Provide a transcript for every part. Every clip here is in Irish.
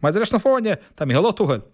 Maidir leis na foirne, tá Micheál Ó Tuathail.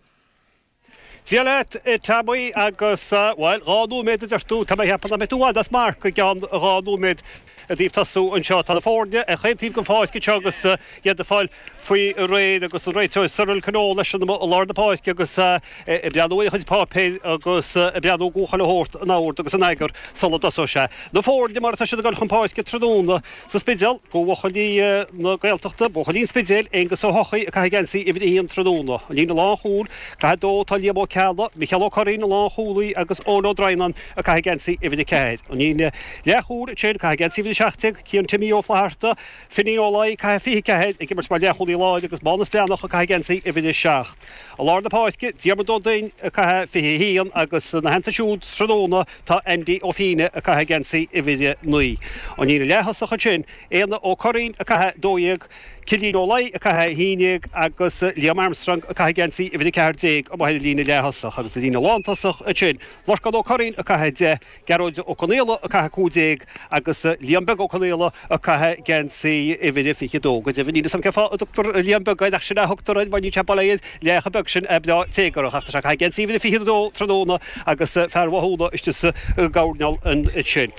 Dia leat, a Tommy agus, bhuel, dhá nóiméad a deir tú, tá mé ag ceapadh nach mbeidh tú i bhfad as marc, i gceann dhá nóiméad i dtaobh tosú anseo. Tá na foirne ar chaon taobh den pháirc anseo agus iad ag fáil faoi réir agus an réiteoir Cyril Connolly leis an i lár na páirce agus ag breathnú ar a chuid páipéir agus ag breathnú go bhfuil chuile shórt in ord agus in eagar sula dtosóidh sé. Na foirne mar atá siad ag dul chun páirce tráthnóna. An Spidéal, buachaillí na Gaeltachta, buachaillí an Spidéil, Aonghus Ó hEochaidh ag caitheamh geansaí uimhir a haon tráthnóna. An líne lánchúil, ag caitheamh 2, tá Liam Ó Ceallaigh, Micheál Ó Curraoin, an lánchúlaí agus Eoin Ó Droighneán ag caitheamh geansaí uimhir a ceathair. An líne leathchúil, Shane ag caitheamh geansaí uimhir a seacht déag, Cian Timmy Ó Flaithearta, Finín Ó Laoi ag caitheamh fiche ceathair ag imirt mar leathchúlaí láir agus Mánus Breathnach ag caitheamh geansaí uimhir a seacht. I lár na páirce, Diarmuid Ó Duinn ag caitheamh fiche a haon agus ina theannta siúd tráthnóna, Tá Andy Ó Fíne ag caitheamh geansaí uimhir a naoi. An líne leath-thosach ansin, Éanna Ó Curraoin ag caitheamh a dó dhéag, Cillian Ó Laoi ag caitheamh a haon dhéag agus Liam Armstrong ag caitheamh geansaí uimhir a ceathair déag amuigh ar an líne leath-thosach. Agus an líne lántosach ansin, Lorcán Ó Curraoin ag caitheamh a deich, Gearóid Ó Conaola ag caitheamh a cúig déag, Agus Liam Beag Ó Conaola ag caitheamh geansaí uimhir a 22, go deimhin, níl 'fhios a'm cén fáth a dtugtar Liam Beag air, ach sin é a thugtar air mar níl sé beag ar bhealach ar bith, sin, beo téagarach. Ach tá sé ag caitheamh geansaí uimhir a 22 tráthnóna agus fear Bhoth Chuanna istigh sa gcoirneál ansin.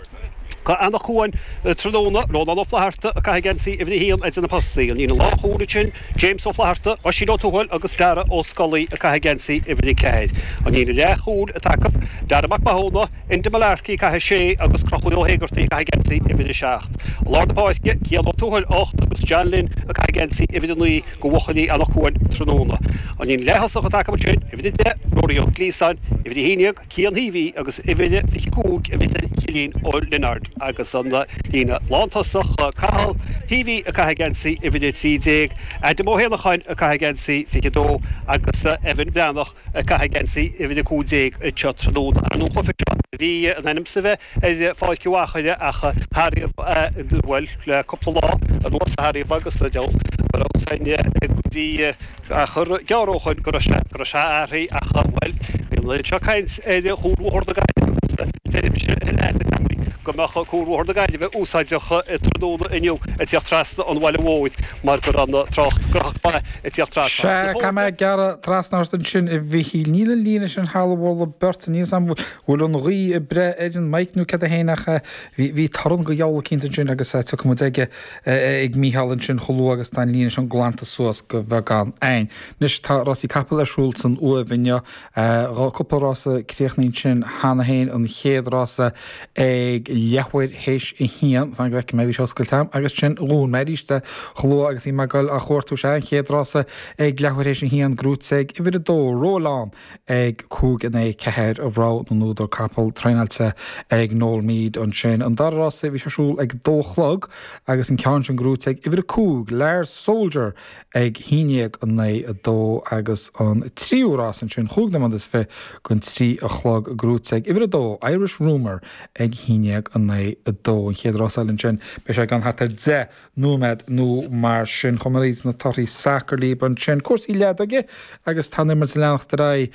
Tá Eanach Cuain tráthnóna, Rónán Ó Flatharta ag caitheamh geansaí uimhir a haon idir na postaí. An líne lánchúil ansin, James Ó Flatharta, Oisín Ó Tuathail agus Darragh Ó Scolaí ag caitheamh geansaí uimhir a ceathair. An líne leath chúil atá acu, Darragh Mac Mathúna, Enda Mullarkey, ag caitheamh 6, agus Crochúr Ó hÉigeartaigh, ag caitheamh geansaí uimhir 7. I lár na páirce, Cian Ó Tuathail, 8, agus John Lynn, ag caitheamh geansaí uimhir 9, do bhuachaillí Eanach Cuain tráthnóna. An líne leaththosach atá acu ansin, uimhir 10, Ruairí Ó Glíosáin, uimhir 11, Cian Heavey, agus uimhir 25, a bheas ag Cillian Leonard, agus an líne lántosach, Cathal Heavey, ag caitheamh geansaí uimhir 13, Adam Ó hÉanacháin, ag caitheamh geansaí 22, agus Evan Breathnach, ag caitheamh geansaí uimhir a cúig déag seo tráthnóna. An cluiche seo, bhí sé in ainm is a bheith ar Pháirc Mhaigh Mheáin ach ariamh, bhuel le cúpla lá anuas ach ariamh agus deabhal go raibh sin go dtí achar gearr ó shin go raibh sé athraithe ach bhuel bhí an oiread seo caint ar Chuarbhóthar na Gaillimhe agus deirimse leat a Jimí go mbeadh Cuarbhóthar na Gaillimhe úsáideach tráthnóna inniu ag tíocht trasna an bhaile mhóir. mar go raibh an trácht go ríthrom ag tíocht trasna. Sea, caithfidh mé gearradh trasna ort ansin, a Mhichíl. Níl an líne sin thar mholadh beirte, níl a fhios an bhfuil an ghaoth ag breith ar an mic nó cad é fhéin ach bhí torann de sheort eicínt ansin agus tiocfaidh muid ar ais ag Micheál ansin chomh luath agus atá an líne sin glanta suas de bheagán. Anois, tá rásaí capall ar siúl san Uaimh inniu Tá cúpla rása críochnaithe ansin cheana féin, an chéad rása ag leathuair théis a haon, fan go bhfeicfidh mé, bhí sé oscailte agam agus ansin dhún mé arís chomh luath agus bhí mé ag goil á chuartú, sea, an chéad rása ag leathuair théis a haon, gnóite ag uimhir a dó, Roll On ag cúig in aghaidh a ceathair rogha na n-údar capall traenáilte ag Noel Meade, ansin an dara rása bhí sé ar siúl ag a dó a chlog agus an ceann sin gnóite ag uimhir a cúig, Lars Soldier ag 11 in aghaidh a 2 agus an tríú rás ansin cúig nóiméad is fiche don trí a chlog gnóite ag uimhir a dó, Irish Rumour ag 11 in aghaidh a 2. An chéad rás eile ansin, beidh sé ann thart ar deich nóiméad nó mar sin. Chuaigh mé thríd na torthaí sacair libh ansin cúrsaí leadóige agus tá an imirt ag leanacht ar aghaidh.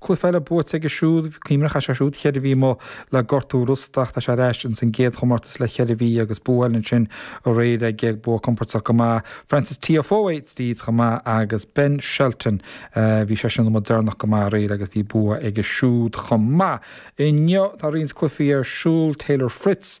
Cluiche eile buaite aige siúd, cuimhnigh go raibh sé siúd cheithre mhí amuigh le gortú rosta ach tá sé ar ais ins an gcéad chomórtas le cheithre mhí agus bua eile ansin aréir aige, bua compordach go maith Frances Tiafoe tríd chomh maith agus Ben Shelton bhí seisean amuigh deireanach go maith aréir agus bhí buaite aige siúd chomh maith. Inniu tá roinnt cluichí ar siúl, Taylor Fritz,